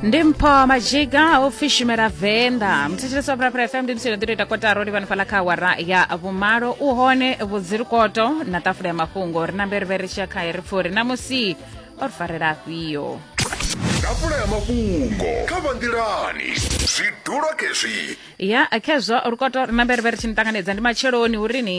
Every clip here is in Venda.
ndi mpho majiga o fishimela venḓa mthetshelesi wa phalaphala fm ndi msilo ḓiro ita kotaro ndi vhanifhala kha awara ya vhumalo u hone vhudzirikoto na ṱafula ya mafhungo ri na mberivhe ri tshiya khaye ri pfuri na musi o ri farela afhio tafula ya mafhungo kha vhanḓilani zwidulo khezwi ya khezwo rukoto ri na mberivhe ri tshi ni ṱanganedza ndi matsheloni uri ni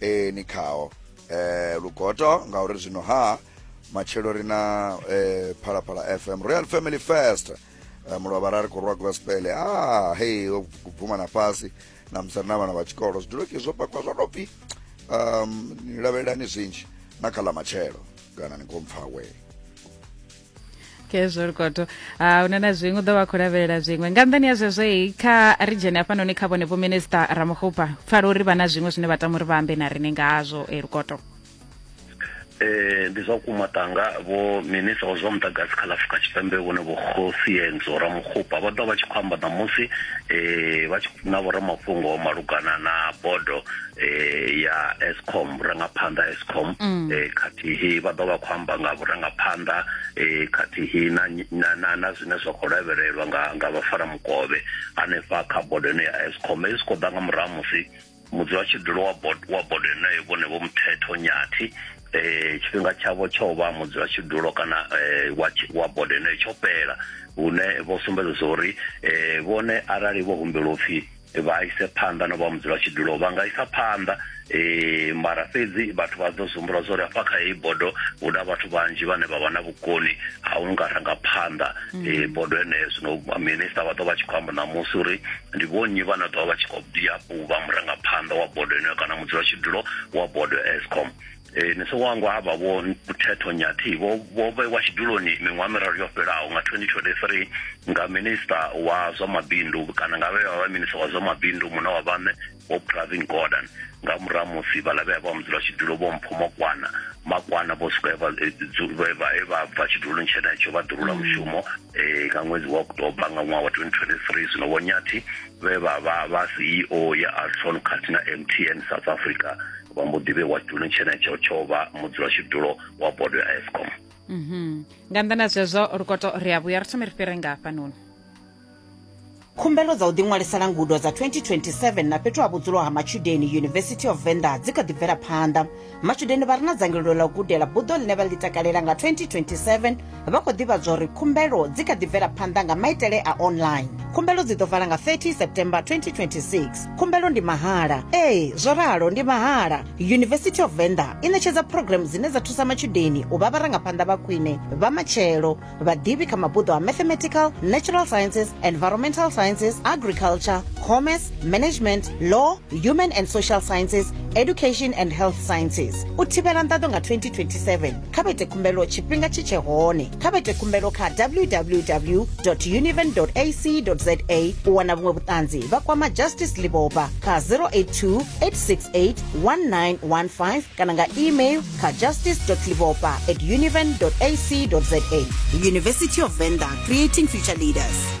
e, ni khao e, lugoto ngauri zwino ha matshelo ri na e, phalaphala fm royal family fest e, mulovha ra ri khou rwa gospel ah hei o bvuma na fhasi na musari na vhana vha tshikolo zwiduloki zwo pakwa zwa tou pfi um, ni lavhelelani zwinzhi na kha ḽa matshelo kana ni khou mpfa wee okay zwo lukoto uh, ah, une na zwiṅwe u ḓo vha khou lavhelela zwiṅwe nga nḓani ya zwezwoi kha ri dzhene hafhanoni kha vhone vho minista ramuhupa pfala uri vha na zwiṅwe zwine vha tama uri vha ambe na rine ngazwo e lukoto eh ndi zwa kuma tanga vho minister zwa mudagasi kha lafrika tshipembe vhone vho khosienzo ramukhupa vha ḓo vha tshi khou amba ṋamusi eh vha tshi na vhoramafhungo malugana na bodo eh ya Eskom vhurangaphanḓa Eskom mm. eh khathihi vha ḓo vha khou amba nga vhurangaphanḓa eh khathihi na na na zwine zwa khou lavhelelwa nga nga vhafara mukovhe hanefha kha bodo ine ya Eskom i siko ḓa nga murahu musi mudzula tshidulo wa bodo wa bodo yeneyo vhone vho muthetho nyathi eh tshifhinga tshavho tsho vha mudzula tshidulo kana eh wa wa bodo yeneyo tsho fhela hune vho sumbedza uri eh vhone arali vho humbelwa upfhi vha ise phanḓa no vha mudzula tshidulo vha nga isa phanḓa um mara fhedzi vhathu vha ḓo zumbula zwa uri hafha kha heyi bodo hu na vhathu vhanzhi vhane vha vha na vhukoni ha u nga ranga phanḓa um mm. bodo heneyo zwino minista vha ḓo vha tshi khou amba ṋamusi uri ndi vhonnyi vhane ḓo vha vha tshi khou bia vha murangaphanḓa wa bodo heneyo kana mudzula tshidulo wa bodo escom e, ni si wangwa ha vha vho muthetho nyathi vho vho vhewa tshiduloni miṅwaha miraru yo fhelaho nga 2023 nga minista wa zwa mabindu kana nga vhevha vha minista wa zwa mabindu muna wa vhaṋe vho pravin gordon nga murahu musi vhaḽa vhea vha mudzula tshidulo vho mpho makwana makwana vho swika e vha e bva tshiduloni tshenetsho vha ḓurula mm. mushumo um nga ṅwedzi wa oktoba nga ṅwaha wa 2023 zwino vhonyathi vhe vha vha vha ceo ya alson khathihi na mtn south africa vha mbo ḓi vhewa tshiduloni tshenetsho tsho vha mudzulatshidulo wa bodo ya escom mhm. nga nnḓa na zwezwo lukoto ri a vhuya ri thome ri fhire nga hafhanoni khumbelo dza u ḓiṅwalisela ngudo dza 2027 na fhethu ha vhudzulo ha matshudeni university of venda dzi kha ḓi bvela phanḓa matshudeni vha re na dzangalelo ḽa u gudela buḓo ḽine vha ḽi takalela nga 2027 vha khou ḓivhadzwa uri khumbelo dzi kha ḓi bvela phanḓa nga maitele a online khumbelo dzi ḓo vala nga 30 september 2026 khumbelo ndi mahala ee zwo ralo ndi mahala university of venda i ṋetshedza programu dzine dza thusa matshudeni u vha vharangaphanḓa vha khwine vha matshelo vhaḓivhi kha mabuḓo a mathematical natural sciences environmental sciences agriculture commerce management law human and social sciences education and health sciences u thivhela nḓaḓo nga 2027 kha vha ite khumbelo tshifhinga tshi tshe hone kha vha ite khumbelo kha www univen ac za u wana vhuṅwe vhuṱanzi vha kwama justice libopa kha 082 868 1915 kana nga email kha justice libopa at univen ac za university of venda creating future leaders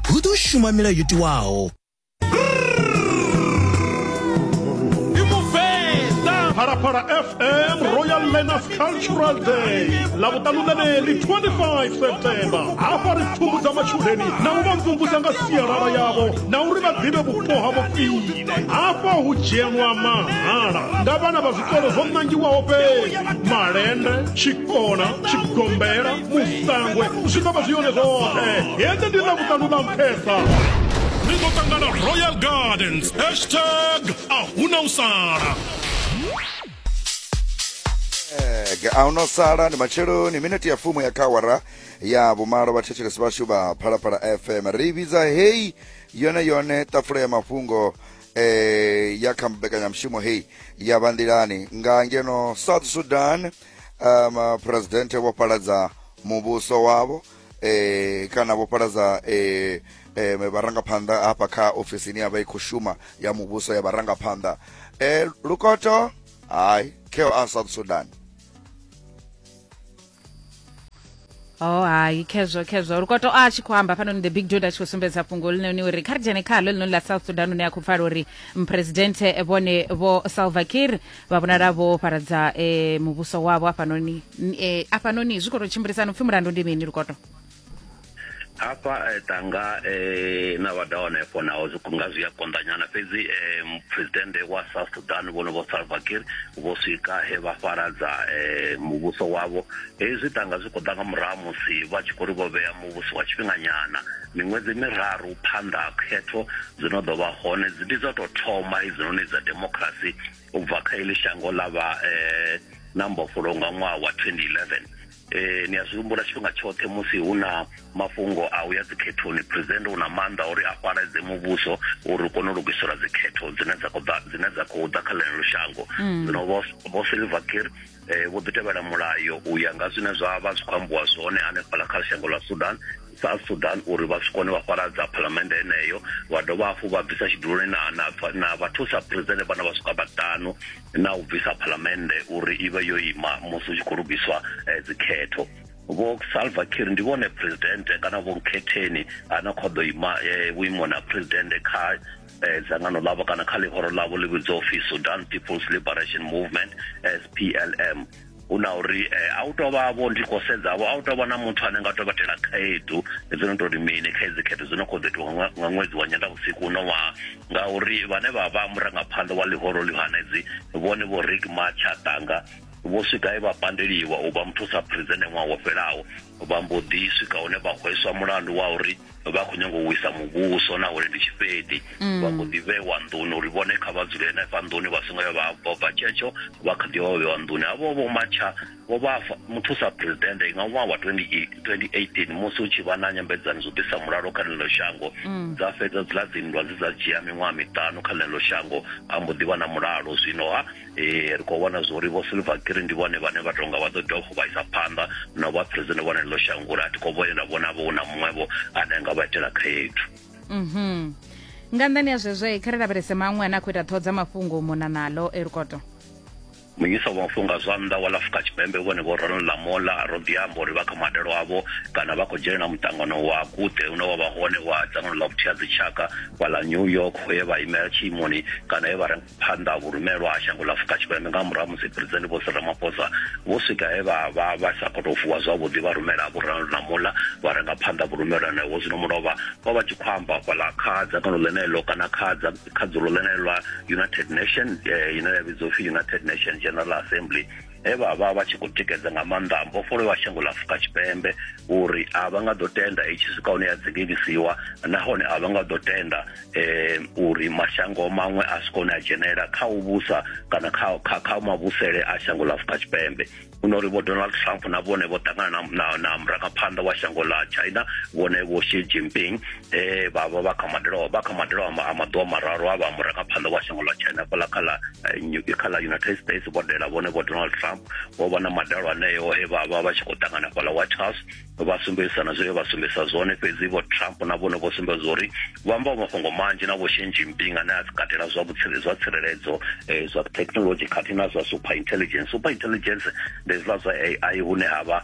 hu ḓo shuma milayo yo tiwaho. phalaphala fm royal learners cultural day lavhuṱanu ḽeneḽi 25 september hafha ri pfumbudza matshudeni na u vha mvumvusa nga sialala yavho na uri vha ḓivhe vhupo havho khwine hafha hu dzhenwa mahala nga vhana vha zwikolo zwo ṋangiwaho fhedzi malende tshikona tshigombela musangwe zwi ḓo vha zwi yone zwoṱhe hende ndi na vhuṱanu na mphesa ri ḓo ṱangana royal gardens hashtag a huna u sala ge a no sala ndi matsheloni minete ya fumo ya khawara ya vhumalo vhathetshelesi vhashu vha phalaphala fm ri vhidza heyi yone yone tafula ya mafhungo eh, ya kha mbekanyamushumo heyi ya vha nḓilani nga ngeno south sudan um, presidente vho paladza muvhuso wavho eh, kana vho paladza eh, eh, vharangaphanḓa hafha kha ofisi ine ya vha i khou shuma ya muvhuso ya vharangaphanḓa eh, lukoto hayi keo a south sudan oh hai khezwo khezwo uri kwato a tshi khou amba hafhanoni the big dod a tshi khou sumbedza fhungo linoni uri kha ri dzhene khalo linoni ḽa south sudan une a khou pfala uri mphuresidenthe vhone vho salva kir vha vhonala vho fharadza eh, muvhuso wavho hafhanoni eh, hafhanoni zwi khou tou tshimbilisana upfhi mulandu ndi mini lukoto hafha eh, tanga eh, na vha dahone efo naho nga zwi a konḓanyana fhedzi eh, presidente wa south sudan vhono vho salva kir vho swika he vha fharadza eh, muvhuso wavho Hezwi ṱanga zwi khou ḓa nga murahu ha musi vha tshi khou ri vho vhea muvhuso wa tshifhinganyana miṅwedzi miraru phanḓa ha khetho dzi no ḓo vha hone. Ndi dza u tou thoma hedzinoni dza demokirasi u bva kha heḽi shango ḽa vha na mbofholowo nga ṅwaha wa 2011. Ni a zwi humbula tshifhinga tshoṱhe musi hu na mafhungo a u ya dzikhethoni, Phresidennde u na maanḓa a uri a fhaladze muvhuso uri u kone u lugiselwa dzikhetho dzine dza khou ḓa dzine dza khou ḓa kha ḽeneḽo shango. Zwino Vho Silverkir eh, vho ḓi tevhela mulayo u ya nga zwine zwa vha zwi khou ambiwa zwone hanefhala kha shango ḽa sudan south sudan uri vha swi kone vha fharadza phalamende heneyo vha dovha hafhu vha bvisa tshiduloni na, na, na vhathusa presidente vhana vha swika vhaṱanu na u bvisa phalamende uri i vhe yo ima musi u tshi khou lugiswa eh, dzikhetho vho salva kir ndi vhone presidente kana vho nkhetheni ana khou ḓo ima eh, vhuimoni ha presidente kha eh, dzangano ḽavho kana kha ḽihoro ḽavho ḽi vhidzwa upfi sudan people's liberation movement splm hu na uri eh, a u tou vha vho ndi khou sedzavho a u tou vha na muthu ane nga tou vhatela khaedu dzo no tou ri mini kha edzi khetho dzo no khou ḓo itiwa nga nga ṅwedzi wa nyendavhusiku uno ṅwaha ngauri vhane vha vha murangaphanḓa wa ḽihoro ḽihanedzi vhone vho rik matshatanga vho swika e vha pandeliwa u vha muthusa phrizene ṅwaha wo fhelaho vha mbo ḓi swika hune vha hweswa mulandu wa uri vha khou nyanga u wisa muvhuso na uri ndi tshifhedi mm. vha khou ḓi vhewa nḓuni uri vhone kha vha dzule henefha nḓuni vha songo ya vha bva bva tshetsho vha kha ḓi vha vha vhewa nḓuni havho vho matsha vho vha muthusa presidente nga ṅwaha wa 2018 musi hu tshi vha na nyambedzano zwo ḓisa mulalo kha ḽeneḽo shango mm. dza fhedza dzila dzinndwa dzi dza dzhia miṅwaha miṱanu kha ḽeneḽo shango ha mbo ḓi vha na mulalo zwino ha eh, ri khou vhona zwori vho silver green ndi vhone vhane vha tonga vha ḓo dovha futhi vha isa phanḓa na vha president vhone ḽo shangula a thi khou vhonela vhona vho na muṅwevho ane a nga vha itela khaedu mhm nga nḓani ya zwezwo kha ri lavhelese maṅwe ane a khou ita ṱhoho dza mafhungo mona nalo elukoto munyisa wa mafhungo a zwa nnḓa wa la afrika tshipembe vhone vho ronald lamola a ro ḓiamba uri vha kha madalo avho kana vha khou dzhenelela muṱangano wa kuṱe une wa vha hone wa dzangano ḽa vhuthiha dzitshaka wa la new york ho ye vha imela tshiimoni kana he vha phanḓa ha vhurumelwa ha shango ḽa Afurika Tshipembe nga murahu musi Phresidennde Vho Cyril Ramaphosa vho swika he vha vha vha sa khou tou vuwa zwavhuḓi vha rumela Vho Ronald Namola vha renga phanḓa vhurumelwa naho zwino mulovha vha vha tshi khou amba fhaḽa kha dzangano ḽeneḽo kana kha kha dzulo ḽeneḽo ḽa United Nation eh, ine ya vhidzwa upfi United Nation General Assembly he vha vha vha tshi khou tikedza nga maanḓa mbofholo wa shango ḽa Afrika Tshipembe uri a vha nga ḓo tenda i tshi swika hune ya dzingelisiwa nahone a vha nga ḓo tenda um uri mashango maṅwe a swika hune a dzhenelela kha u vhusa kana kha kha kha mavhusele a shango ḽa Afrika Tshipembe huno uri vho Donald Trump na vhone vho ṱangana na na na murangaphanḓa wa shango ḽa China vhone vho Xi Jinping eh ba ba ba kamandelo ba kamandelo ama ama do mararo aba mura ka phando wa shango la China kola kala eh, new kala United States bo dela bone bo Donald Trump bo bana madalo ane yo he ba ba ba tshi ko tangana kola White House ba sumbesa na zwe ba sumbesa zone fhedzi bo Trump na bone bo sumbesa zori ba mba mafhungo manzhi na bo Xi Jinping ane a katela zwa vhutsire zwa tsireledzo eh zwa technology khathihi na zwa super intelligence super intelligence ndi zwa zwa AI hune hava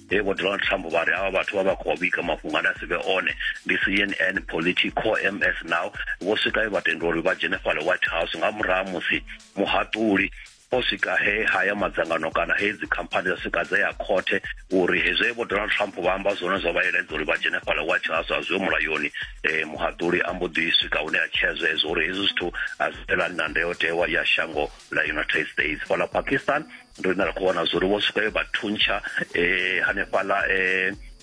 he vho donald trump vha ri avha vhathu vha vha khou vhiga mafhungo ane a si vhe one ndi cnn politico ms now vho swika vha tenda uri vha dzhene fhale white house nga murahu musi muhaṱuli o swika he haya madzangano kana he dzikhamphani dza swika dza ya khothe uri hezwi vho donald trump vha amba zwone zwa vha eledza uri vha dzhene fhala white house a zwiho mulayoni um muhaṱuli a mbo ḓi swika hune a tshea zwezwo uri hezwi zwithu a zwi fhelani na ndayotewa ya shango la united states fhala pakistan ndo ine ra khou wana zwori vho swika yo vha thuntsha um hanefhaḽa um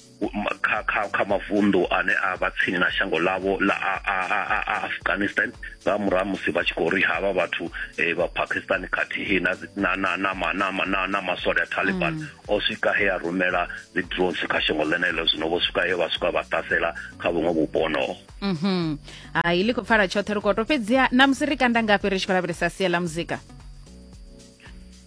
kha kha kha mavunḓu ane a vha tsini na shango ḽavho ḽa afghanistan nga murahu musi vha tshi khou ri havha vhathu um vha pakistan khathihi na masole a taliban mm. o swika he a rumela dzi drones kha shango ḽeneḽo zwino vho swika he vha swika vha ṱasela kha vhuṅwe vhupo honoho mhm. hai ḽi khou pfala tshoṱhe ri khou to fhedziha na musi ri kanda ngafhi ri tshi khou lavhelesa sia ḽa muzika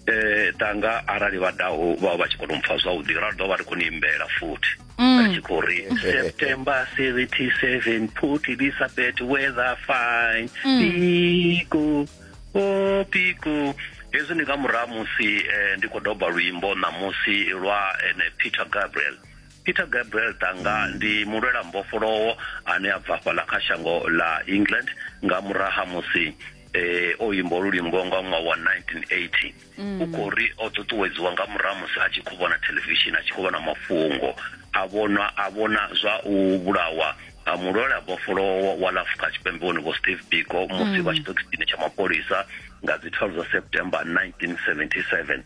eh tanga arali vha daho vha vha tshi kona u mpfa zwavhuḓi ra ḓo vha ri khou ni imbela futhi mm. ri tshi khou ri september 77 put elisabeth weather fine mm. piko o oh, piko hezwi ndi nga murahu musi eh, ndi khou doba luimbo ṋamusi lwa ene eh, peter gabriel peter gabriel tanga ndi mulwela mbofholowo ane a bva fhaḽa kha shango ḽa england nga muraha musi eh, o imba olu luimbo nga ṅwaha wa 1980 mm. u khou ri o ṱuṱuwedziwa nga murahu musi a tshi khou vhona thelevishini a tshi khou vhona mafhungo a vhona a vhona zwa u vhulawa a mulwela bofholowo wa la afrika tshipembe vhone vho steve biko musi mm. vha tshi ṱokisini tsha mapholisa nga dzi 12 dza september 1977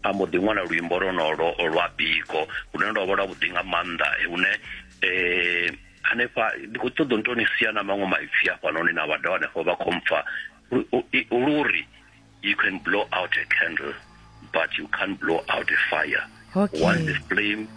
a mbo ḓi ṅwala luimbo lonolo lwa biko lune lwa vha lwa vhuḓi nga maanḓa hune um hanefha ndi khou ṱoḓa nto ni sia na maṅwe maipfi hafhanoni na vhada hanefho vha khou mpfa luri you can blow out a candle but you can't blow out a fire okay. once the flame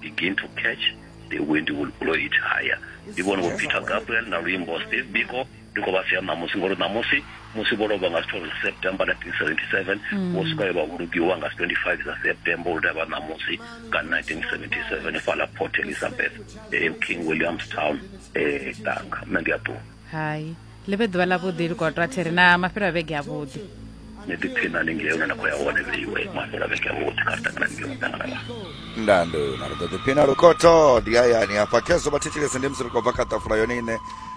begin to catch the wind will blow it higher ndi vhone vho peter gabriel na luimbo steve biko ndi khou vha sia ṋamusi ngori ṋamusi musi vho lovha nga si 12 september 1977 mm. vho swika vha vhulugiwa nga si 25 dza september uri vha ṋamusi nga 1977 fhala port elizabeth eh, king williamstown eh, tanga nṋe ndi a ṱuwa hai ḽi vhe ḓuvha ḽavhuḓi likotwa thiri na mafhelo a vhege avhuḓi ni ḓipfhina haningei hune na khou ya hone vheiwe mafhela vhege vhoṱhe kha ri ṱangana ningei na ṱangana vha ndando na ri ḓo ḓipfhina lukhoto ndi hayani hafha khezwo vhathetshelesi ndi musi ri khou bva kha ṱafula yone ine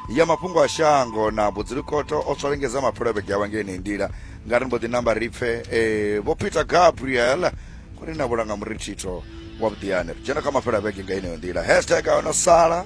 ya mafhungo a shango na budzilukoto o swalengedza mapfhelo vhege awa ngei nei ndila nga ri mbo ḓi namba ri pfhe eh, vho peter gabriel kuri na vhulanga murithitho wa vhuḓiyani ri dzhena kha mafhelo a vhege nga ineyo ndila hashtag a no sala